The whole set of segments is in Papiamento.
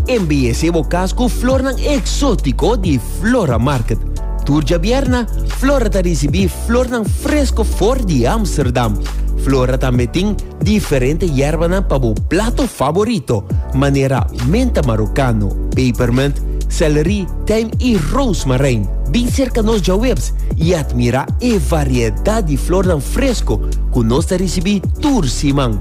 Embeyesé bo cas cu flornan exótico di Flora Market. Tur djabierna, Flora ta ricibi flornan fresco for di Amsterdam. Flora tambe tin diferente yerbanan pa bo plato favorito, manera menta marocano, pepermint, celery, tijm y rozemarijn. Bin cerca nos djawebs y admira e variedad di flornan fresco cu nos ta ricibi tur siman.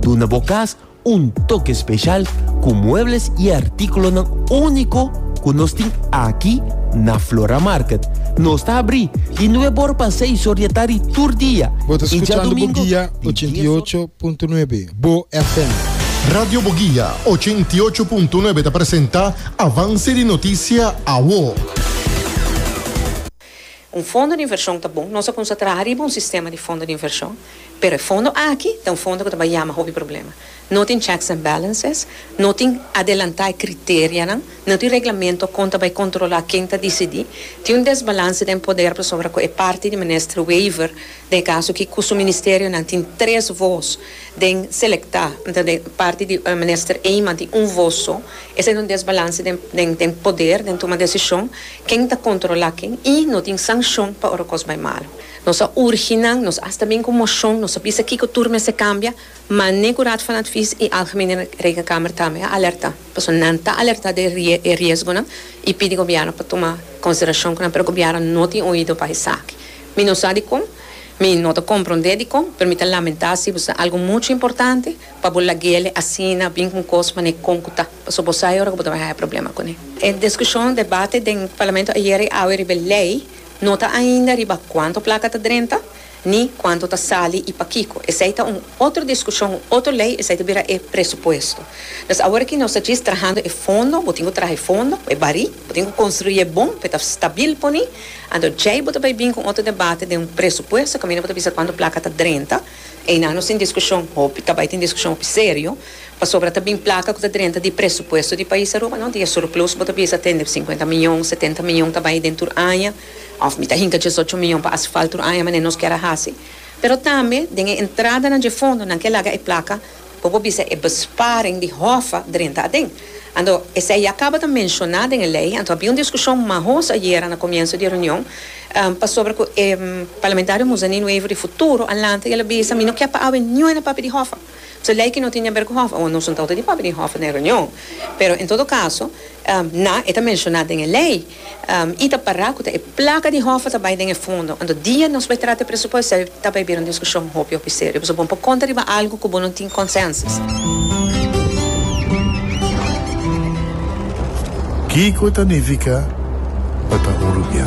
Duna bo cas Un toke speshal ku muebles i artíkulonan úniko ku nos tin aki na Flora Market. Nos ta abrí di nueve or pa seis or di atari tur dia Bo ta i djadumingu di dies or. skuchando Boguia 88.9, Bo FM. Radio Boguia 88.9 ta presenta Avance di Noticia, Awo. Un fondo di invershon ta bon. Nos a kumsa traha riba un sistema di fondo di invershon, pero e fondo aki ta un fondo ku ta bai yama hopi problema. No tin checks and balances, no tin adelantá e kriterianan, no tin reglamentu kon ta bai kontrolá ken ta disidí, tin un desbalanse den poder pasobra ku e parti di Minister Wever, den e kaso aki ku su ministerionan tin tres vos den selektá, nta den parti di Minister Eman tin un vos so. Esei ta un desbalanse den poder, den tuma desishon. Ken ta kontrolá ken i no tin sanshon pa ora kos bai malu. Nos a urgi nan, nos asta bin ku moshon, nos a bisa kiko tur mester kambia, manera ku Raad van Advies i Algemene Rekenkamer tambe a alertá. Pasobra nan ta alertá di e riesgonan i pidi gobièrnu pa tuma konsiderashon ku nan, pero gobièrnu no tin oido pa esaki. Mi no sa dikon, mi no ta komprondé dikon, pero mi ta lamentá si bo sa algu muchu importante pa bo lag'el asina bin ku un kos manera kon ku ta. Paso bo sai ora cu bo ta bay haya problema con e. E discusion, debate, den Parlamento ayer y awe riba e ley no ta ainda riba cuanto placa ta drenta ni cuanto ta sali y pakico. Esey ta un otro discusion, un otro ley, esey ta bira e presupuesto. Dus awor aki nos ta djis trahando e fondo, bo tin cu traha e fondo, e bari, bo tin cu construi e bon pa e ta stabil poni, anto djey bo ta bay bin con otro debate den un presupuesto caminda bo ta bisa cuanto placa ta drenta. Eina nos tin diskushon hopi, ta bai tin diskushon hopi serio, pasobra ta bin plaka ku ta drenta di presupuesto di pais Aruba, no? Di e surplus bo ta bisa tende sinkuenta miyon, setenta miyon ta bai den tur aña, òf mi ta hinka diesocho miyon pa asfalt tur aña, manera nos kier a hasi, pero tambe den e entradanan dje fondonan ke laga e plaka. Bo por bisa e besparing di Hoffa drenta aden. Anto, esei ya caba ta mencioná den e ley, anto a bin un discusion mahoso ayera na comienso di e reunion, pasobra cu e parlamentario Musa Nino Avery di Futuro a lanta y el a bisa, Mi no kier pa awe niue na papia di Hoffa. Pues e ley aki no tin di aber cu Hoffa. Awor, nos no ta outa di papia di Hoffa na e reunion, pero en todo caso, na, e ta mencioná den e ley. I ta para ku ta e plaka di hòf a ta bai den e fondo. Anto dia nos bai trata e presupuesto ei ta bai bira un diskushon hopi hopi serio. Pasobra bo por konta riba algu ku bo no tin konsènsus. Kiko ta nifiká pa ta hurupiá?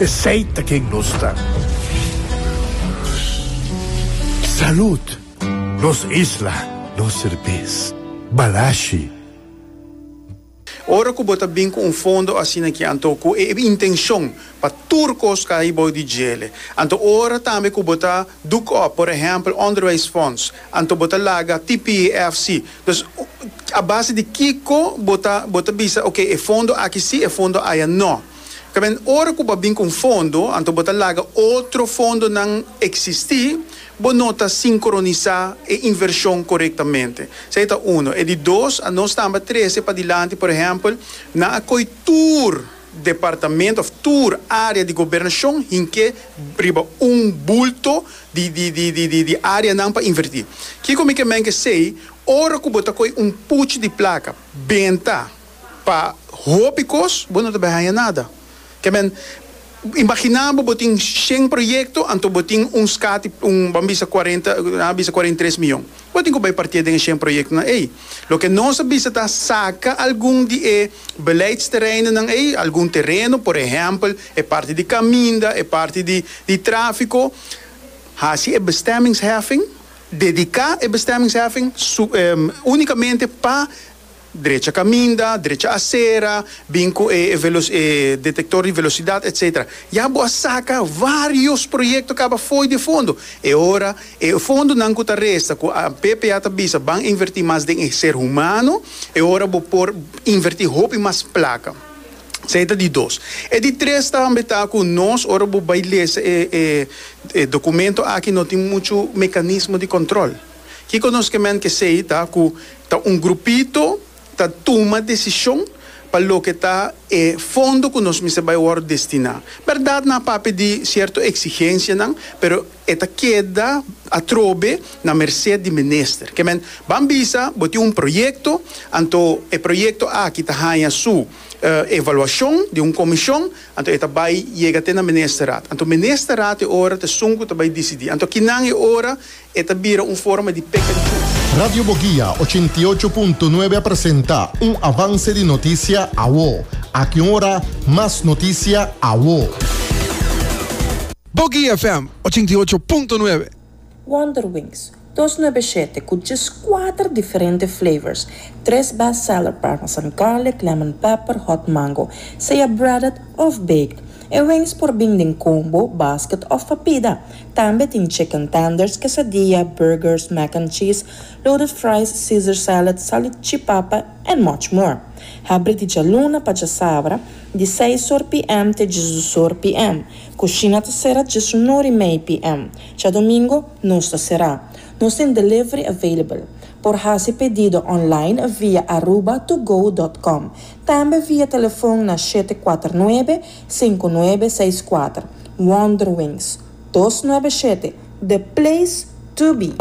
Esey ta ken nos ta. Salud! Nos isla, nos serbes. Balashi. Ora cu bo ta bin cu un fondo asina aki anto cu e intencion pa tur cos cay bou di djele, anto ora tambe cu bo ta doek op, por ehempel onderwijsfonds, anto bo ta laga PPEFC. Dus, a base di kico bo ta, bo ta bisa, ok, e fondo aki si, e fondo aya no. Tamen ora ku bo a bin ku un fondo, anto bo ta laga otro fondonan eksistí, bo no ta sinkronisá e invershon korektamente. Esei ta uno. E di dos, a nos tambe a trese padilanti, por ehèmpel, nan a koi tur departamento òf tur área di gobernashon hink'é riba un bulto di áreanan pa invertí. Kiko mi ke menke esei, ora ku bo ta koi un puchi di plaka, benta, Pa hopi kos bo no ta bay haña nada. Ke men, imaginá bo bo tin shen proyekto anto bo tin un skati, un bo a bisa kuarenta, nan a bisa kuarenta i tres mion. Bo tin ku bay partié den e shen proyektonan ei. Loke nos a bisa ta saka algun di e beleidstereinennan ei, algun tereno, por ehèmpel e parti di kaminda, e parti di tráfiko, hasi e bestemmingsheffing, dediká e bestemmingsheffing únikamente pa. drecha kaminda, drecha asera, bin ku e e detektor di velosidat etsetera. Ya bo a saka vários proyekto kaba fo'i di e fondo. E ora e fondonan ku ta resta ku a BPA ta bisa ban invertí mas den e ser humano, e ora bo por invertí hopi mas plaka. Esei ta di dos. E di tres tambe ta ku nos ora bo bai lesa e e dokumento aki no tin muchu mekanismo di kòntròl. Kiko nos ke men ke sei ta ku ta un grupito ta tuma desishon pa loke ta e fondo ku nos mester bai wòrdu destiná. Bèrdat nan a papia di sierto eksigensianan, pero e ta keda atrobe na mersé di minister. Ke men ban bisa bo tin un proyekto, anto e proyekto aki ta haña su evaluashon di un komishon, anto e ta bai yega te na ministerat. Anto ministerat e ora t'esun ku ta bai disidí. Anto kinan e ora. E ta bira un forma di peka di Dios. Radio Boguia ochenta i ocho punto nuebe a presenta un avance di noticia awo. Aki un ora mas noticia awo. Boguia FM ochenta i ocho punto nuebe. Wonder Wings, dos nuebe shete, cu djes cuater diferente flavors, tres best seller parmesan garlic, lemon pepper, hot mango, sea breaded of baked. E wings por bin den combo, basket of papida. Tambe tin chicken tenders, quesadilla, burgers, mac and cheese, loaded fries, Caesar salad, salichipapa and much more. Habri di djaluna pa djasabra, di seis or pm te djisdos or pm. Cushina ta cera djes un or y mei pm. Djadomingo nos ta cera. Nos tin delivery available. Por haci pedido online via aruba2go dot com. Tambe via telefon na shete cuater nuebe, Sinku nuebe seis kuater Wonderwings dos nuebe shete The Place To Be.